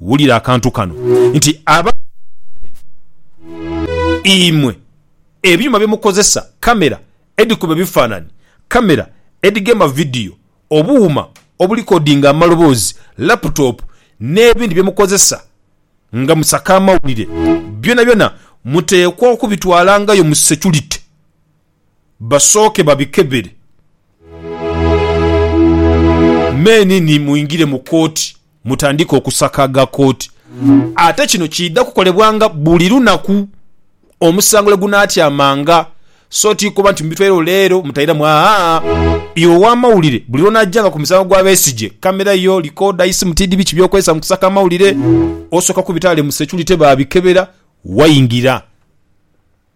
Wulira akantu kano nti abaghanulire imwe ebyuma bye mukozesa, kamera edhikuba ebifaanani, kamera edhigema vidiyo, obuuma obulikodinga amaloboozi, laputopu n'ebindi bye mukozesa nga musaka amawulire, byonabyona muteekwa okubitwalangayo mu securite. basooke babikebere. Meni ni mwingire mu kooti mutandike okusaka aga kooti. Ate kino kiidha kukolebwanga buli lunaku omusango lwe gunaatyamanga, so ti kuba nti mubitwairewo leero mutairamu aa. Iwe ow'amawulire buli lw'onaajanga ku musango gwa Besigye, kamera yo, likooda, isimu tiidhi biki by'okozesa mu kusaka amawulire, osooka kubita ghale mu securite baabikebera waingira.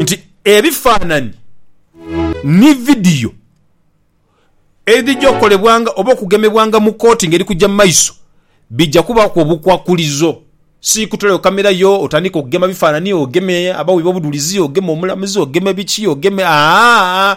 nti ebifaanani ni vidiyo edhija okukolebwanga oba okugemebwanga mu kooti ngeri kuja mu maiso bija kubaaku obukwakulizo. Si kutolayo kamera yo otandike okugema bifaanani, ogeme abawi b'obudhulizi, ogeme omulamuzi, ogeme biki, ogeme, aa-aa-aa,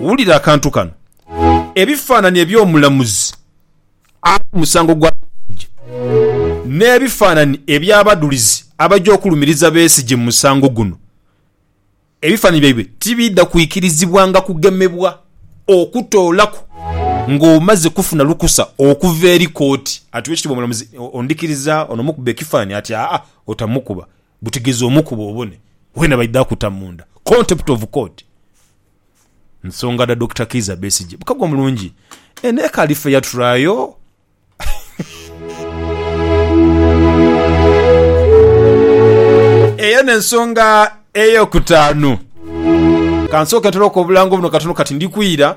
Wulira akantu kano. Ebifaanani eby'omulamuzi ali ku musango gwa Besigye n'ebifaanani eby'abadulizi abaja okulumiriza Besigye mu musango guno, ebifaanani byaibwe tibiidha kwikirizibwanga kugemebwa okutoolaku ng'omaze kufuna lukusa okuva eri kooti. Atuwa ekitiibwa omulamuzi Ondikiriza? Ono mukube ekifaanani ati, Aa. Otamukuba butegezi omukube obone wena baidha kuta munda contempt of court nsonga dha Dokita Kiiza Besigye bukagwa mulungi eno ekaali fair trial. Eyo n'ensonga ey'okutaanu. Ka nsooke ntereku obulango buno katono kati ndi kwira.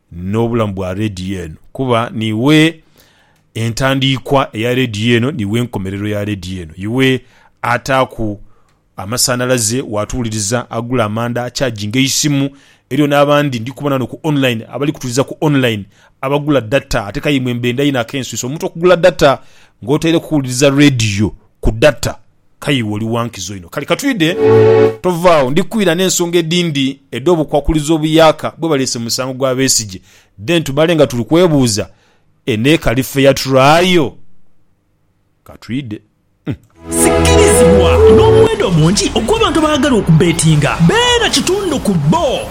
n'obulamu bwa leediyo eno kuba niiwe entandiikwa eya leediyo eno, niiwe enkomerero ya leediyo eno. Iwe ataaku amasanhalaze, waatuwuliriza, agula amanda, achaginga eisimu. Eriyo n'abandi ndi kubona ghano ku online, abali kutuuliza ku online, abagula data ate k'aye imwe mbenda inho ak'enswisa omuntu okugula data ng'otaireku kuwuliriza leediyo ku data. Kale iwe oli wa nkizo inho. Kale katwidhe. Tovaagho, ndi kwira n'ensonga edhindi edh'obukwakulizo obuyaaka bwe baleese mu musango gwa Besigye, then tumale nga tuli kwebuuza eno ekali fair trial. Katwidhe. Sikirizibwa n'omuwendo omungi ogw'abantu abaagala okubbeetinga beena kitundu ku bbo.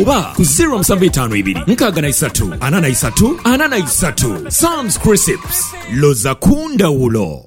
Oba ku ziro musanvu itaanu ibiri nkaaga na isatu ana na isatu ana na isatu. Sam's Crisps, loza ku ndhawulo!